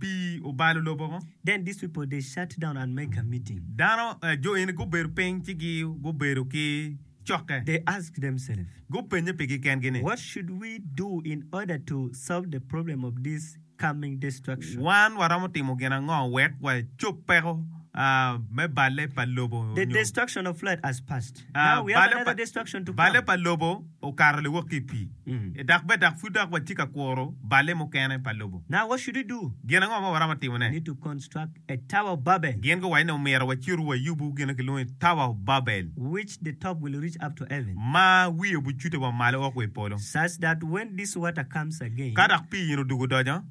pii obalo lobo ko. Then these people they shut down and make a meeting. Dano, jo eni gubedo piny ci gi gubedo ki cokke. They asked themselves. Gupenye pigi kengi ni. What should we do in order to solve the problem of this coming destruction? Wan waromo timo gin ango wek wacob peko me balle pa lobo nyo. The destruction of flood has passed. Balle pa lobo okato liwok ki i pii, dok bed dok pud dok watye ka kuro balle mukene pa lobo. Gin ango ma waromo timone? Gin guwaco ni omyero waciru wayubu gin ma kilwongo ni Tower of Babel, ma wiye obicute wa malo woko wa i polo. Ka dok pii eno odwogo odonyo,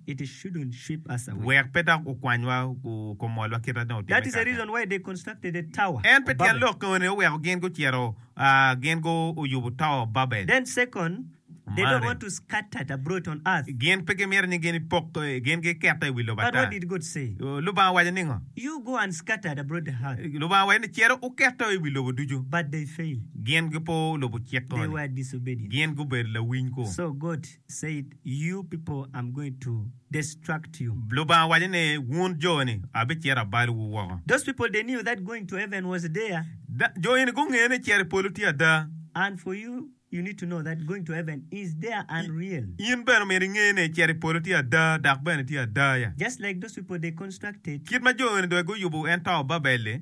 wek pe dok gukwanywa gumolwa kit ma dong otimme kaka-ni. En pe tyen lok enoni oweko gin gucito, gin guyubo Tower Babel. Mari, gin pe gimito ni gin epok, gin gikette i wi lobo ata. Lubanga owaco ningo? Lubanga owaco ni, Cito wukette i wi lobo ducu. Gin gipo lubo cik enoni. Gin gubedo lawiny-ku. said, You people, I'm going to destruct you. Lubanga owaco ni, Wun jo-ni, abicito abalowu woko. Those people, they knew that going to heaven was there. Jo eni gungeyo ni cito i polo tye ada. And for you, you need to know that going to heaven is there and real. In bene omyero inge ni cito i polo tye ada dok bene tye ada. Just like those people, they constructed. Kit ma jo-ni dong guyubo ento Babel-li.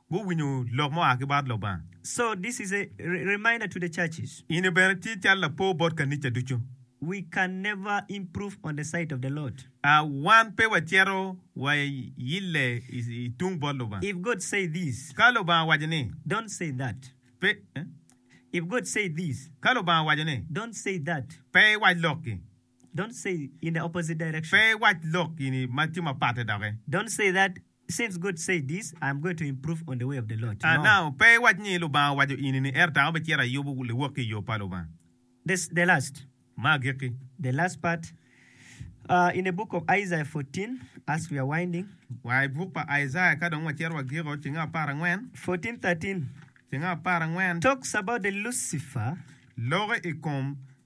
guwinyo lok mua ki bot Lubanga. In bene tye cal lapor bot kanica ducu. A Wan pe wacito wa ille i tung bot Lubanga. Ka Lubanga owaco ni, Pe. Ka Lubanga owaco ni, Pe iwac lok-ki. Pe iwac lok gini ma tye mapatte doki. Pe iwac ni, Lubanga owaco ini ni, Ento ango bicito ayub liwok ki i yo pa Lubanga? Ma agikki. Wa i buk pa Aijaya ka dong wacito wagiko, cinge apar angwen. Loki i kom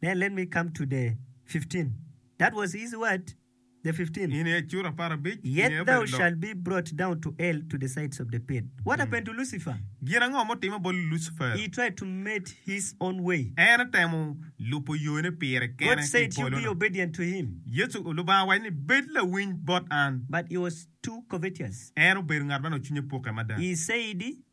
Then let me come to the fifteen, that was his word, the fifteen. In aye cura apar abic, in Yet aye thou obedo lok. shalt be brought down to hell to the sides of the pit. What happened to Lucifer? Gin ango ma otimme bot Lucifer? He tried to made his own way. En otemo lubo yone pire God kene ki i said, You be polo-nu. obedient to him. Yecu, Lubanga owaco ni, Bed lawiny bot an. But he was too covetous. En obedo ngat ma nongo cwinye pukke mada. He said,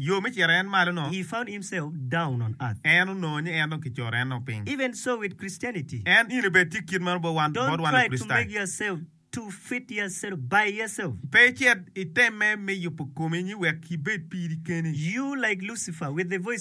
Yo me cito en malo no. He found himself down on earth. En onongo ni en dong kicoro en dong piny. Even so with Christianity. En in obed tye kit meno bot wan Don't try to Lukricitayo. make yourself to fit yourself by yourself. Pe icit itemme me yubo komi ni wek ibed piri keni. You like Lucifer with the voice of.